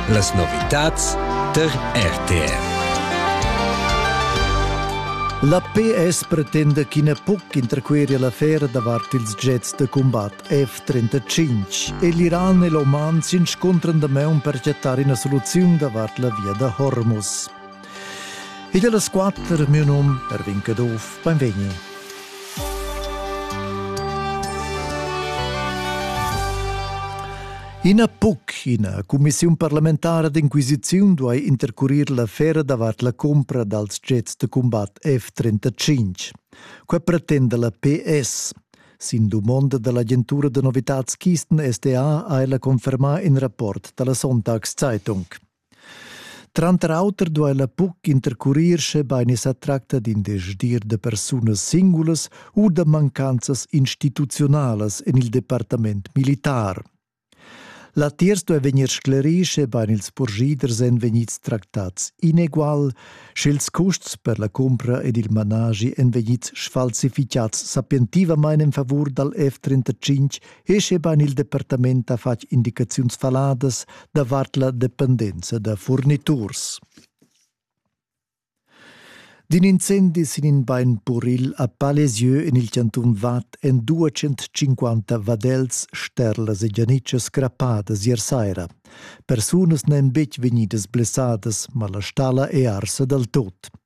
Las novitads tar RTR. La PS pretenda ch'ina puc interqueria l'affera davart ils jets da combat F-35 e l'Iran e l'Oman s'inscontran da maun per chattar ina soluziun davart la via da Hormuz. Igl las quatter, miu num Ervin Caduff, benvegni. Ina PUC, ina cumissiun parlamentara d'inquisiziun duai intercurir l'affera davart la cumpra dals jets da combat F-35. Quai pretenda la PS. Sin dumonda dall'agentura da novitads Kisten SDA ha ella confermà in rapport dalla Sonntagszeitung. Tranter auter duella buc intercurir schebein i sa tracta d'in desdir da persunas singulas u da mancanzas instituziunalas en il departament militar. Latiers duei vegnir sclerì, schebein ils purschiders èn vegnids tractats inegual, sch'ils custs per la cumpra ed il managi èn vegnids sfalsificads sapientivamain en favur dal F-35 e scheban il departament ha fatg indicaziuns faladas davart la dependenza da furniturs. D'in incendi sin in bain puril a Palesieu en il cantun Vad èn 250 vadels, sterlas e gianitschas crappadas ier saira. Persunas n'èn betg vegnidas blessadas, ma la stalla è arsa dal tot.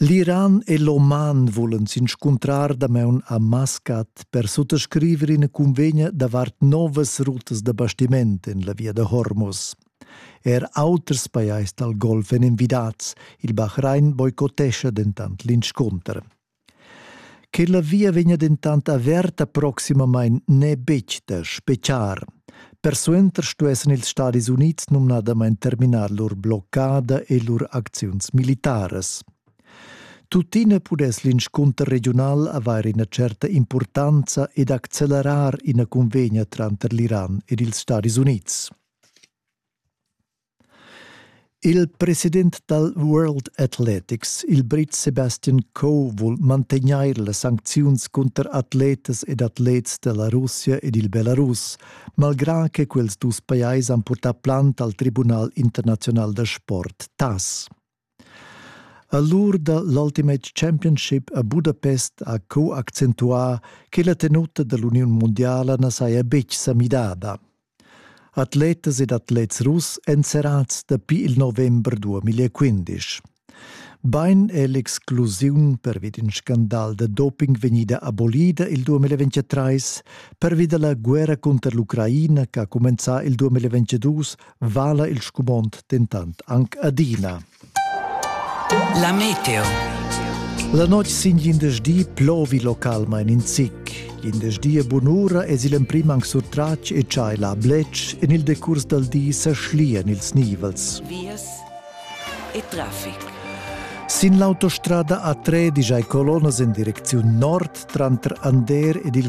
L'Iran e l'Oman vulan s'inscuntrar damaun a Maskat per suttascriver ina cunvegna davart novas rutas da bastiment en la via da Hormuz. Er auters pajais dal Golf èn envidats, il Bahrain boicottescha dentant l'inscunter. Che la via vegna dentant averta proximamain n'è betg da spetgar. Persuenter stuessan ils Stadis Unids numnadamain terminar lur bloccada e lur acziuns militaras. Tuttina pudess l'inscunter regiunal avair ina certa impurtanza ed accelerar ina cunvegna tranter l'Iran ed ils Stadis Unids. Il president dal World Athletics, il Brit Sebastian Coe, vul mantegnair las sancziuns cunter atletas ed atlets da la Russia ed il Belarus, malgrà che quels dus pajais han purtà plant al Tribunal internaziunal da sport, TAS. A l'ur da l'Ultimate Championship a Budapest ha co accentuà che la tenuta da l'uniun mundiala na saja betg sa midada. Atletas ed atlets russ èn serrads dapi il november 2015. Bain è l'exclusiun pervi d'in scandal da doping vegnida abolida il 2023 pervi da la guerra cunter l'Ucraina ch'ha cumenzà il 2022 vala il scumond dentant anc adina. La meteo. La notg sin glindesdi plovi localmain in zic. Glindesdi e bunura es il emprim anc surtratg e chai la blec en il decurs dal di sa schlian ils nivels. Vias e traffic. Sin l'autostrada A3 digiai colonas en direcziun nord tranter Ander ed il